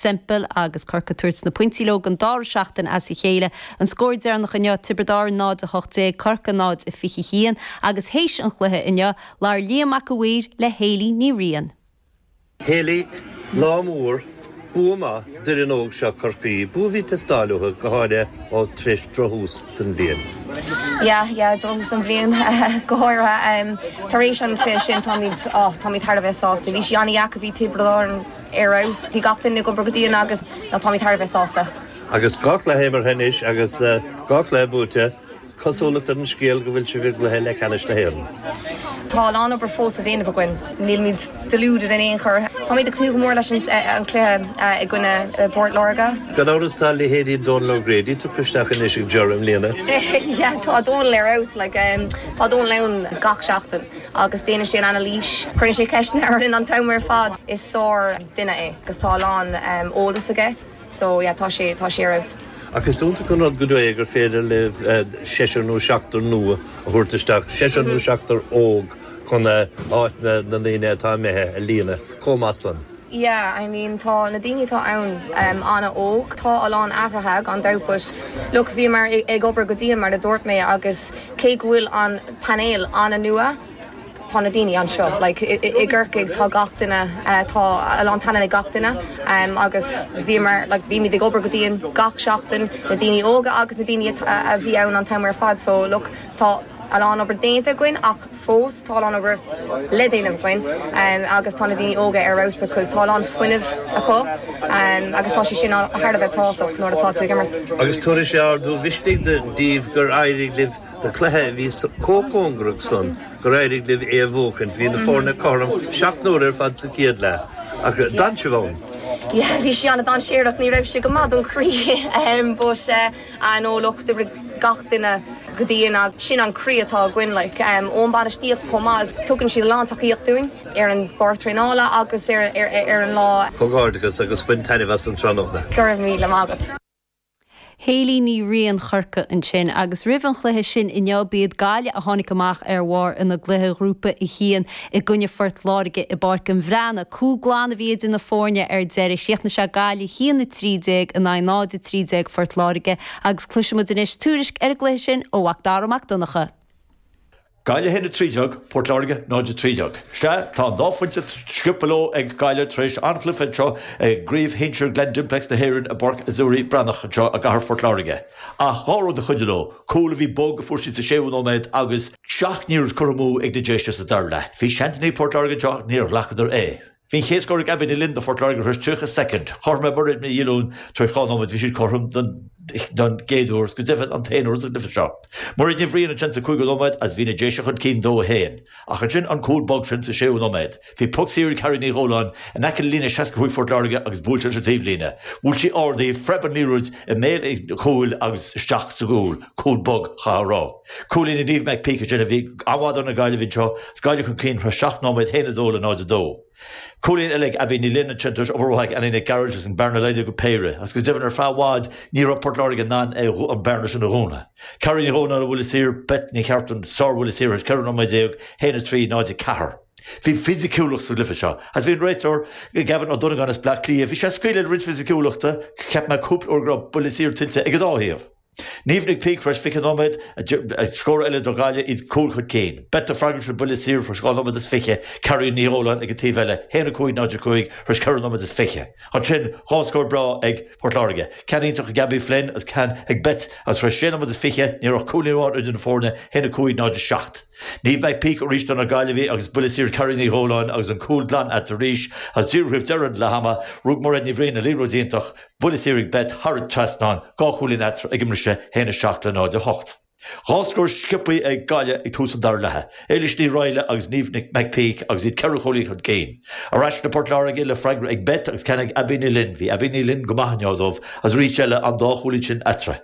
Semple agus Corcaigh ag tabhairt na pointí leo don dara seachtain as a chéile. An scór deireanach inniu, Tiobraid Árann 0-18 Corcaigh 0-21 agus théis an chluiche inniu, labhair Liam Mac a' Mhaoir le Hayley Ní Riain. Hayley, lá mór, bua maith d'fhoireann óg seo Chorcaí, bua a bhí ag teastáil uathu, go háirithe tar éis drochthús don bhliain. Yeah, yeah, drochthús don bhliain, go háirithe tar éis an chluiche sin, táimid, oh, táimid thar a bheith sásta. Bhí sí an-deacair, bhí Tiobraid Árann, Ar fheabhas. Bhí gach duine ag obair go dian agus táimid thar a bheith sásta. Agus dhá chluiche imeartha anois agus dhá chluiche buaite, cosúlacht ar an scéal go mbeidh sibh i gcluiche leathcheannais na hÉireann. Tá a lán obair fós le déanamh againn. Nílimid deluded in aon chor. Táimid ag tnúth go mór leis an gcluiche i gcoinne Port Láirge. Gan amhras tá leithéidí Donal O'Grady tugtha isteach anois ag Ger i mbliana. Tá Donal ar fheabhas. Tá Donal ann gach seachtain. agus déanann sé an anailís, cuireann sé ceisteanna orainn an t-am ar fad. Is sár duine é agus tá a lán eolas aige so yeah tá sé tá sé ar fheabhas. Ach is iontach an rud go deo é gur féidir libh seisear nó seachtar nua a thabhairt isteach, seisear nó seachtar óg chun áit na ndaoine atá imithe a líonadh chomh maith san. Yeah, I mean tá na daoine atá ann ehm an-óg. Tá a lán athraithe gan dabht but look bhíomar ag obair go dian mar a dúirt mé agus cé go bhfuil an painéal an-nua, tá na daoine anseo. Like i i i gCorcaigh tá gach duine eh tá a lán taithí ag gach duine ehm agus bhíomar like bhímid ag obair go dian gach seachtain, na daoine óga agus na daoine a a bhí ann an t-am ar fad so look tá a lán obair déanta againn ach fós tá a lán obair le déanamh againn agus tá na daoine óga ar fheabhas because tá a lán fuinnimh acu agus tá sé sin thar a bheith tábhachtach nuair atá tú ag imirt. Agus tabharfaidh sé ardú misnigh daoibh gur éirigh libh i gcluiche a bhí chomh cóngarach san gur éirigh libh é a bhuachaint. Bhí na foirne cothrom seacht n-uaire ar fad sa chéad leath ach d'fhan sibh ann. Yeah, bhí sé an-dainséarach, ní raibh sé go maith don chroí but eh, an-iarracht ó gach duine go dtí an. Sin an croí atá againn like ón bainistíocht chomh maith is tugann siad a lán tacaíocht dúinn ar an bpáirc traenála agus ar ar an lá. Comhghairdeachas agus bain taitneamh as an tráthnóna. Go raibh míle maith agat. Hayley Ní Riain Chorcaí ansin agus roimh an chluiche sin inniu b'iad Gaillimh a tháinig amach ar bharr ina gcluiche ghrúpa 1 i i gcoinne Phort Láirge i bPáirc an Bhreathnaigh. Cúl glan a bhí idir na foirne ar deireadh. Chríochnaigh sé Gaillimh 1-13 in aghaidh 0-13 Phort Láirge agus cloisimid anois tuairisc ar an gcluiche sin ó Mhacdara Mac Donncha. Gaillimh 1-13, Port Láirge 0-13. Sea, tá an dá phointe sciobtha leo ag Gaillimh tar éis anchluiche anseo i gCraobh Shinsir Glen Dimplex na hÉireann i bPáirc Azzurri Breathnach anseo i gcathair Phort Láirge. Ach dhá rud a chuidigh leo, cúl a bhí bog a fuair siad sa séú nóiméad agus, 7 n-urchar amú ag na Déise sa dara leath. Bhí seansannaí ag Port Láirge anseo ach níor ghlacadar é. Bhí an chéad scór ag Abbie Ní Fhloinn do Phort Láirge tar éis 30 soicind. Cothrom le Mairéad Ní Dhiolúin tar éis dhá nóiméad bhí siad cothrom don gcéad uair agus go deimhin an t-aon uair sa gcluiche seo. Mairéad Ní Bhriain ansin sa cúigiú nóiméad agus bhí na Déise chun cinn 2-1. Ach ansin an cúl bog sin sa séú nóiméad. Bhí poc saor ag Carrie Ní Dhóláin in aice le líne 65 Phort Láirge agus buailte leis an taobhlíne. Bhuail sí ard í, phreab an liathróid i mbéal an chúil agus isteach sa gcúl, cúl bog, caithfear a rá. Cúilín ag Niamh McPeake ansin a bhí an-mhaith do na Gaillimhigh anseo, is Gaillimh chun cinn tar éis 7 nóiméad 1-2 le 0-2. Cúilín eile ag Abbie Ní Fhloinn ansin tar éis obair mhaith ag Annie Nic Gearailt agus an bearna laghdaithe go péire, agus go deimhin ar feadh i bhfad ní raibh Port Láirge in ann an bearna sin a dhúnadh. Carrie Ní Dhóláin ó bhuille saor, Beth Ní Chartúin ó bhuille saor tar éis 14 nóiméad 1, 3, 0, 4. Bhí fisiciúlacht sa gcluiche seo agus bhí an réiteoir, Gavin Ó Donnagáin as Bleá Cliath, bhí sé ag scaoileadh le roinnt fisiciúlachta, cheap mé cúpla uair go raibh buille saor tuillte ag an dá thaobh. Niamh McPeake, tar éis 20 nóiméad, scór eile do Ghaillimh, iad cúl chun cinn. Beth ag freagairt ó bhuille saor, tar éis 2 nóiméad is 20, Carrie Ní Dhóláin ag an taobh eile, 1, 5, 0, 5, tar éis 4 nóiméad is 20. Ansin, dhá scór breá ag Port Láirge, ceann iontach ag Abbie Flynn agus ceann ag Beth agus tar éis 6 nóiméad is 20, ní raibh ach cúilín amháin idir na foirne, 1, 5, 0, 7. Niamh McPeake arís do na Gaillimhigh agus buille saor ag Carrie Ní Dhóláin agus an cúl glan eatarthu arís is díreach roimh dheireadh leath ama rug Mairéad Ní Bhriain ar liathróid iontach buille saor ag Beth thar an trasnán dhá chúilín eatarthu ag an mbriseadh 1-7 le 0-8. Dhá scór sciobthaí ag Gaillimh ag tús an dara leatha, Éilis Ní Raghallaigh agus Niamh McPeake agus iad ceithre chúilín chun cinn. Ar ais le Port Láirge le freagra ag Beth agus ceann ag Abbie Ní Fhloinn, bhí Abbie Ní Fhloinn go maith inné dóibh is arís eile an dá chúilín sin eatarthu.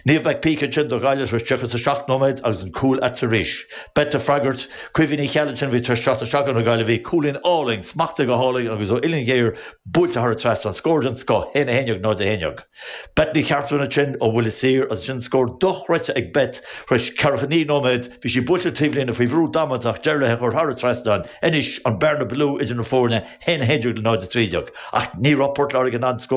Niamh McPeake ansin do Ghaillimh tar éis 37 nóiméad agus an cúl eatarthu arís. Beth ag freagairt. Caoimhe Ní Cheallaigh ansin a bhí tar éis teacht isteach do na Gaillimhigh. Cúilín álainn, smachtaithe go hálainn agus ó uillinn ghéar buailte thar an trasnán. Scór den scoth. Haon a haon déag, náid a haon déag. Beth Ní Chartúin ansin ó bhuille saor agus ansin scór dochreidte ag Beth tar éis ceathracha naoi nóiméad. Bhí sí buailte ar an taobhlíne faoi bhrú damanta ach d'éirigh léi í a chur thar an trasnán. Anois an bearna ba lú idir na foirne, haon a haon déag le náid a trí déag. Ach ní raibh Port Láirge in ann scóráil.